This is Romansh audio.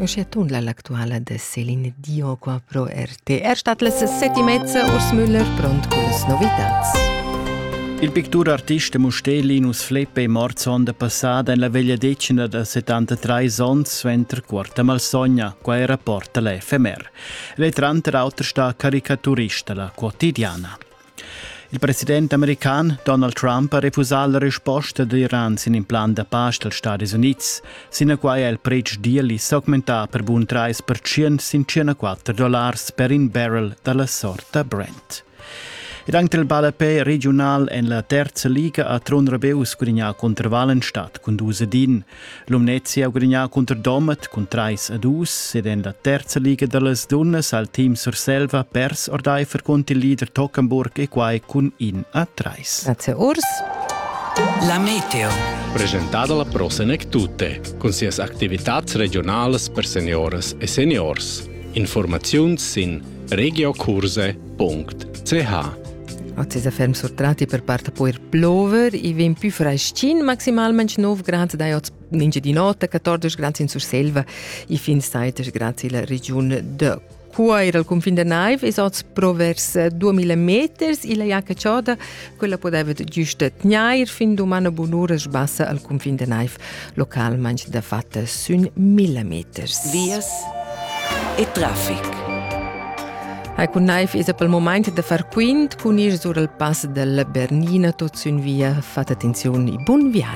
Uschia tundla l'actuala da Celine Dion qua pro RTR stat las set e mezza Urs Müller pront con las novitats. Il pictur artista Mustellinus Fleppe è mort sonda passata en la vegliadetgna da 73 onns suenter quarta malsogna, qua era porta l'FMR. Lei tranter auter sta caricaturista la quotidiana. Il president american Donald Trump ha refusà la resposta d'Iran sin in plan da pace dals Stadis Unids. Sinaquai ha il pretsch deal s'augmentà per bun 30% sin 104 dollars per in barrel da la sorta Brent. Ed anche il ballapè regional en la terza liga ha Tron Rebeu sgrignà cunter Wallenstadt cun dus din. Lumnezia ha gudagnà cunter Domat cun trais a dus ed en la terza liga da las dunnas ha il team Surselva pers ordaifer cont il leader Tockenburg e quai cun in a trais. Grazie Urs. La meteo. Presentada la prossima tutte, con sias activitats regionales per senioras e seniors. Informazioni sin regiocurse.it .ch Oz es a ferm surtrati per part po ir plover, i vegn pü freschin, maximalment 9 grad, dai oz ninge di notte, 14 grad in Surselva, i fin saitg grad illa regiun de Cuoir al cunfin da naiv es oz pro vers 2000 meters, illa Jacca Choda quella podeva giusta tgnair fin dumana bunura sbassa al cunfin de naiv, localmente da fatta sün mille meters. Vias e trafic. Hai cun naiv es pel moment da far quint cun ir sur al pass della Bernina tot sün via. Fate attenzione e bun viaggio.